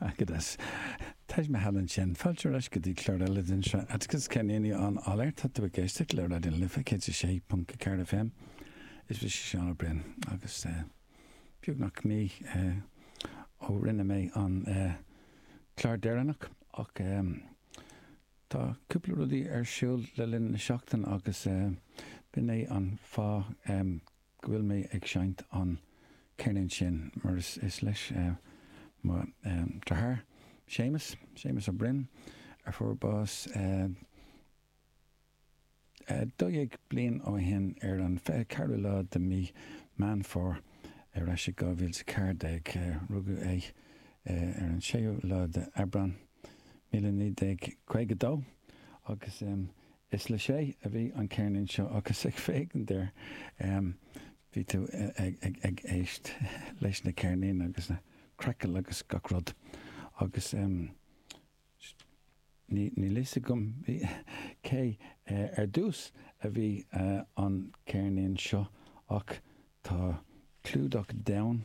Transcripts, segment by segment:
Agus Taj Mahal ansin. Fáilte ar ais go dtí clár eile den sraith Atticus, ceirníní ón áiléar. Tá tú ag éisteacht le Raidió na Life 106.4 FM. Is mise Seán Ó Broin agus eh beagnach mí eh ó rinne mé an eh clár deireanach ach eh tá cúpla rudaí ar siúl le linn na seachtain agus eh b'in é an fáth eh go bhfuil mé ag seinnt an ceirnín sin mar is leis mo deartháir Séamus, Séamus Ó Broin, a fuair bás 12 bliain ó shin ar an 24ú lá de mí Meán Fómhair ar ais i 2014. Rugadh é ar an 6ú lá de Aibreán, míle naoi déag caoga dó agus Is le Shay a bhí an ceirnín seo agus ag féachaint air bhí tú ag éist leis na ceirnín agus na crackle agus gach rud agus níl fhios agam cé ar dtús a bhí an ceirnín seo ach tá clúdach donn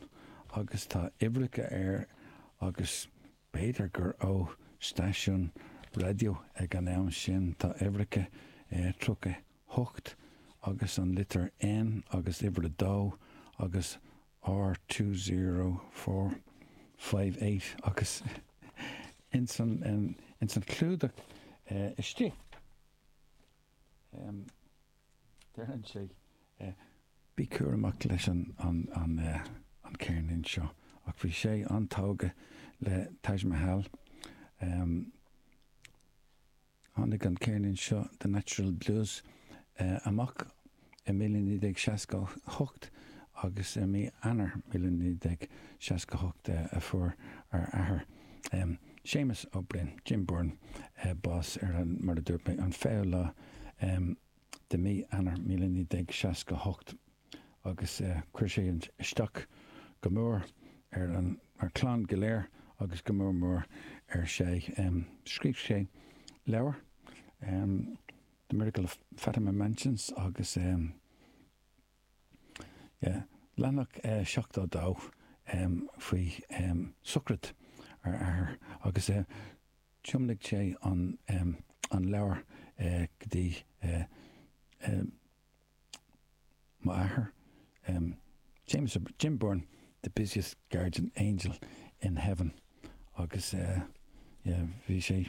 agus tá uimhreacha air agus B'fhéidir gur ó stáisiún raidió ag an am sin, tá uimhreacha 38 agus an litir N agus uimhir 2 agus R two zero four five eight agus ins an ins an chlúdach istigh. Deireann sé, Bí cúramach leis an ceirnín seo. Ach bhí Shay an-tógtha le Taj Mahal. Tháinig an ceirnín seo, The Natural Blues, amach i 1968 agus i mí Eanáir 1968 a fuair ár athair Séamus Ó Broin, Jim Byrne, bás ar an, mar a dúirt mé, an 20ú lá de mí Eanáir 1968 agus chuir sé isteach go mór ar an gclann go léir agus go mór mór ar Shay. Scríobh sé leabhar, The Miracle of Fatima Mansions, agus. Leathanach 72 faoi sochraid ár athair agus thiomnaigh sé an leabhar go dtí m'athair, James, Jim Byrne, The Busiest Guardian Angel in Heaven agus bhí sé.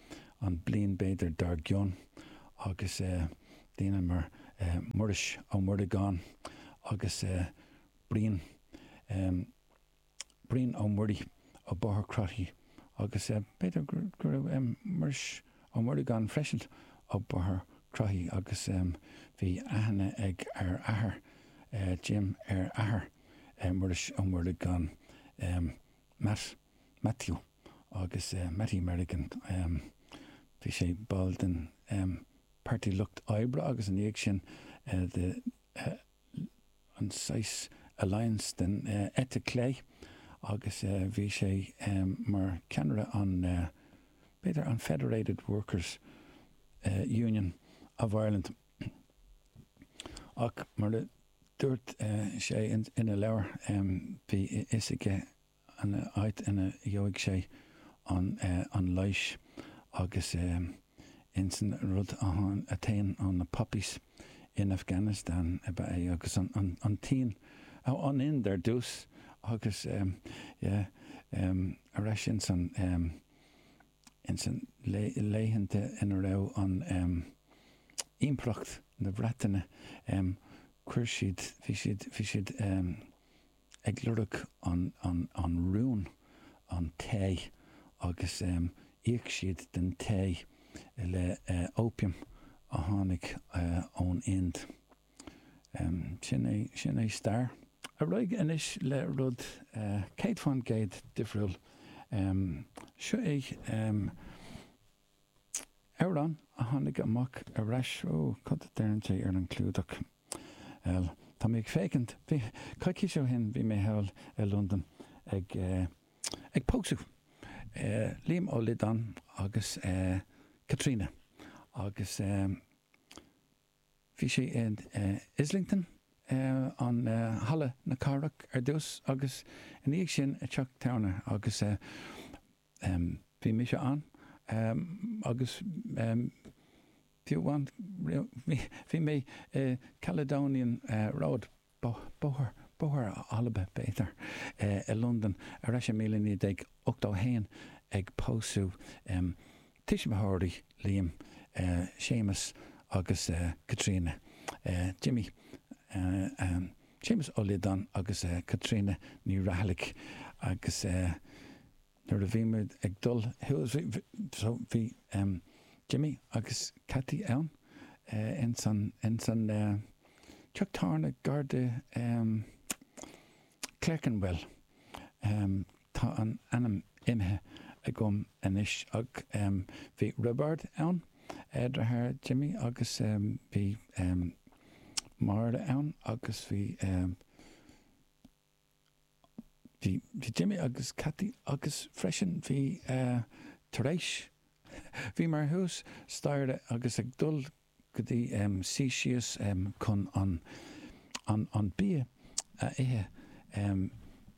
an bliain b'fhéidir dár gcionn agus daoine mar Muiris Ó Muireagáin agus Brian, Brian Ó Muirí ó Bóthar Cnoc Mhuire agus b'fhéidir go raibh Muiris Ó Muireagáin freisin ó Bóthar Crothí agus bhí aithne ag ar athair Jim ar athair Muiris Ó Muireagáin, Matt, Matthew. agus Mattie Merrigan, bhí sé ball den Pairtí Lucht Oibre agus ina dhiaidh sin de an saghas Alliance den eite clé agus bhí sé mar ceannaire an, b'fhéidir an Federated Workers Union of Ireland ach mar a dúirt sé ina leabhar bhí a fhios aige an áit ina gheobhaidh sé an leighis agus insan rud a théann ó na poppies in Afghanistan ab ea é agus an tSín, an Ind ar dtús agus yeah, ar ais insan, insan laethanta ina raibh an Impireacht na Breataine, chuir siad, bhí siad, bhí siad. ag lorg an rún, an tae agus íoc siad den tae le opium a tháinig ón Ind. Sin é stair. Ar aghaidh anois le rud céad faoin gcéad difriúil. Seo é. Amhrán a tháinig amach ar ais Ó, cad a deireann sé ar an gclúdach? L, Tá mé ag féachaint. Bhí, coicís ó shin bhí mé thall i Londain ag eh, ag pósadh eh Liam Ó Loideáin agus eh Caitríona agus ehm bhí sé i eh Islington eh an eh Halla na Cathrach ar dtús agus ina dhiaidh sin i teach tábhairne agus eh Bhí mise ann agus fiú ann bhí mé i Caledonian Road, Bóthar Alba, i Londain ar ais i 1981 ag pósadh tuismitheoirí Liam, Séamus agus Caitríona, Jimmy, Séamus Ó Liodáin agus Caitríona Ní Rathallaigh agus nuair a bhí mé ag dul suas bhí Jimmy agus Cathy ann ins an teach tábhairne gar de Clerkenwell. Tá an t-ainm imithe agam anois ach bhí Roibeárd ann, deartháir Jimmy, agus bhí Máire ann agus bhí bhí Jimmy agus Cathy agus freisin bhí Therese. Bhíomar thuas staighre agus ag dul go dtí, suí síos chun an bia a ithe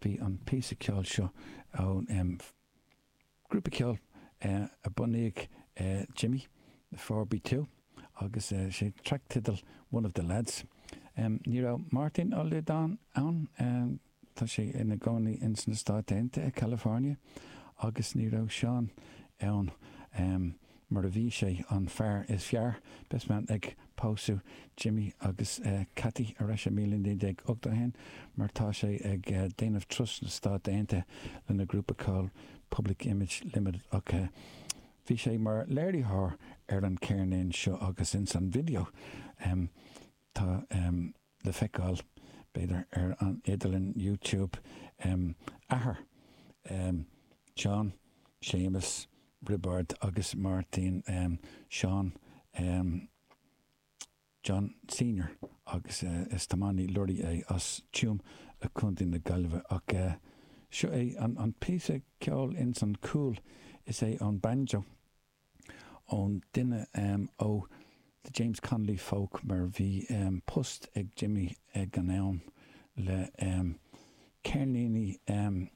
bhí an píosa ceoil seo ón grúpa ceoil a bhunaigh Jimmy the 4 Be 2 agus sé an traic teidil One of the Lads ní raibh Martin Lydon ann Tá sé ina gcónaí ins na Stáit Aontaithe i California, agus ní raibh Seán ann mar a bhí sé an fear is fearr, best man, ag pósadh Jimmy agus Kathy arais i míle naoi déag ochtó a haon mar tá sé ag déanamh turas sna Stáit Aontaithe lena grúpa ceoil Public Image Limited ach bhí sé mar léiritheoir ar an céirnín seo agus ins an video tá. le feiceáil, b'fhéidir, ar an idirlíon YouTube, em. Athair, em, John, Séamus, Roibeárd agus Máirtín, em, Seán, em, John Senior agus, eh, is tiománaí lorraí é as Tuam i Contae na Gaillimhe ach, eh, seo é an, an píosa ceoil ins an cúl, is é an banjo. ón duine em. ó The James Connolly Folk mar bhí em. post ag Jimmy ag an am le em. ceirníní em.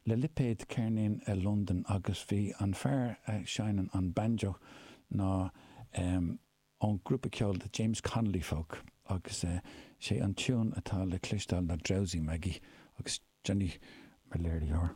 le lipéad ceirníní i Londain agus bhí an fear a seinneann an banjo ná em. ón grúpa ceoil The James Connolly Folk agus eh. sé an tiún atá le cloisteáil ná Drowsy Maggie agus Johnny mar léiritheoir.